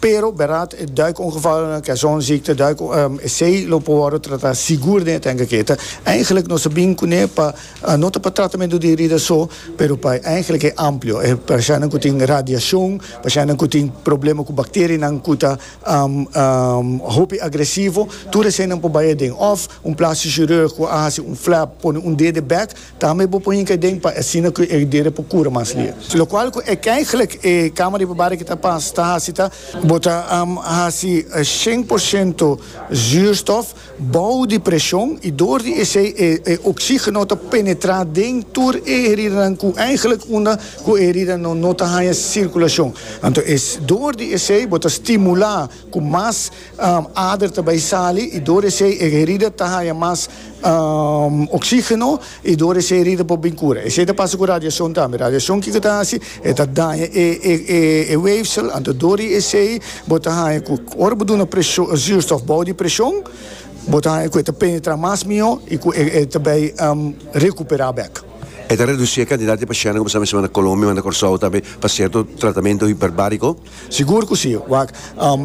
Pero bèrad e duikongevallen, kersonziekte, duik, esei lo por wòrdu tratá sigur den e tènk aki. Ta eindelijk nos a bin kuné pa, no ta pa tratamentu di herida so, pero pa eindelijk e amplio, e pashanan ku tin radiashon, pashanan ku tin problema ku bakterianan ku ta hopi agresivo, tur eseinan por bai aden. Òf un plastic chirurg ku a hasi un flap, pone un dede bèk. Tambe bo por hinca den pa asina cu e eridera por cura mas lia. Locual cu e caiglec e cama riba barri que ta pas ta haci ta. Bo ta haci cien por ciento zuurstof bao di presion y door di esey e oxigeno ta penetra den tur e heridanan cu eigenlijk unda cu e heridanan no ta haya circulacion. Anto es door di esey bo ta stimula cu mas. Ader ta bai sali y dor esey e herida ta haya mas oxigeno y dor esey herida por bin cura. Esey ta pasa cu radiacion tambe. Radiacion kico ta haci? E ta daña e weefsel, anto dor di esey bo ta haya cu ora bo duna zuurstof bou di presion bo ta haya cu e ta penetra mas miho y cu e ta bai recupera bek. E ta reduci e cantidad di pacienten cu bo sabi mester manda Colombia, manda Corsou tambe pa cierto tratamento hiperbarico. Sigur cu si, wak.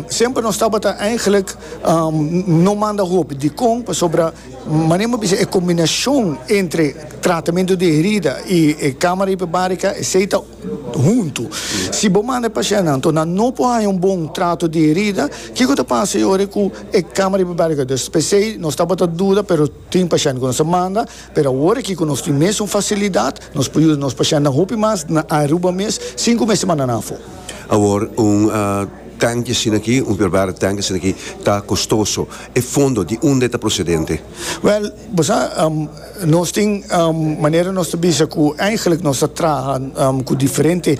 Semper nos tabata eigenlijk no manda hopi. Dicon? Pasobra manera mi a bisa e combinacion entre tratamento di herida y e camara hiperbarica esey ta hunto. Si bo manda e pacientnan to nan no por haya un bon trato di herida, kico ta pasa e ora cu e camara hiperbarica ta dus? Pesey nos tabata duda pero. Tin pashènt ku nos ta manda, pero awor aki ku nos tin mes un fasilidat, nos por yuda nos pashèntnan hopi mas na Aruba mes sin ku mester manda nan afó. Awor un tènki asina aki, un pervara tènki asina aki ta kostoso. E fondo di unda e ta prosedente? Wèl, bo sa, nos tin manera nos ta bisa ku eigenlik nos ta traha ku diferente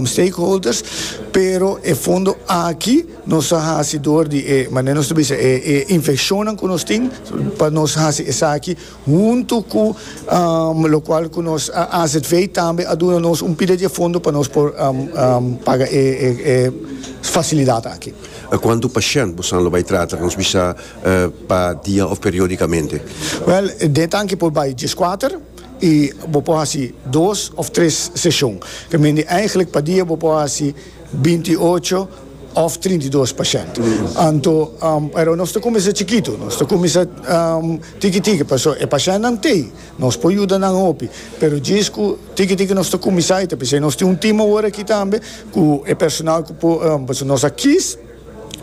stakeholders, pero e fondo aki, Nos a hasi dor di e, manera nos ta bisa, e e infeccionnan cu nos tin, pa nos hasi esaki huntu cu locual cu nos AZV tambe a duna nos un pida di e fondo pa nos por paga e e facilidad aki. Cuantu pashent bosan lo bay trata? Nos bisa pa dia of periodicamente? Wel, den tanki por bay diescuater y bo por hasi dos of tres secion. Ke men di, eigenlijk pa dia bo por hasi binti ocho òf trinta i dos pa shènt. Anto, pero nos ta kuminsá chikitu, nos ta kuminsá tiki tiki, pasobra e pashèntnan t'ei, nos por yuda nan hopi, pero djis ku tiki tiki nos ta kuminsá i ta p'esei nos tin un tim awor aki tambe ku e personal ku por, pasobra nos a kis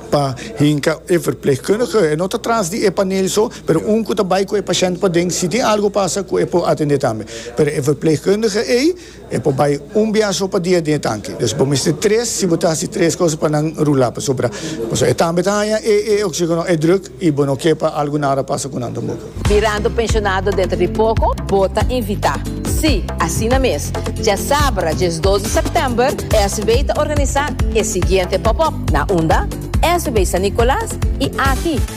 pa hinka e verplegkundige, e no ta tras di e panel so, pero un ku ta bai ku e pashènt paden, si tin algu pasa ku e por atendé tambe, pero e verplegkundige ei. E por bai un biaha so pa dia den e tanki. Des bo mester tres si bo ta hasi tres cosa pa nan rula, pasobra pasobra e tambe ta haña e e oxigeno, e druk, i bo no ke pa algu nara pasa ku nan tampoco. Mirando pensionado dentro di poco bo ta invita. Si, asina mes. Djasabra djes dos di september SW ta organisa e siguiente pop-up, na unda? SW San Nicolas i aki.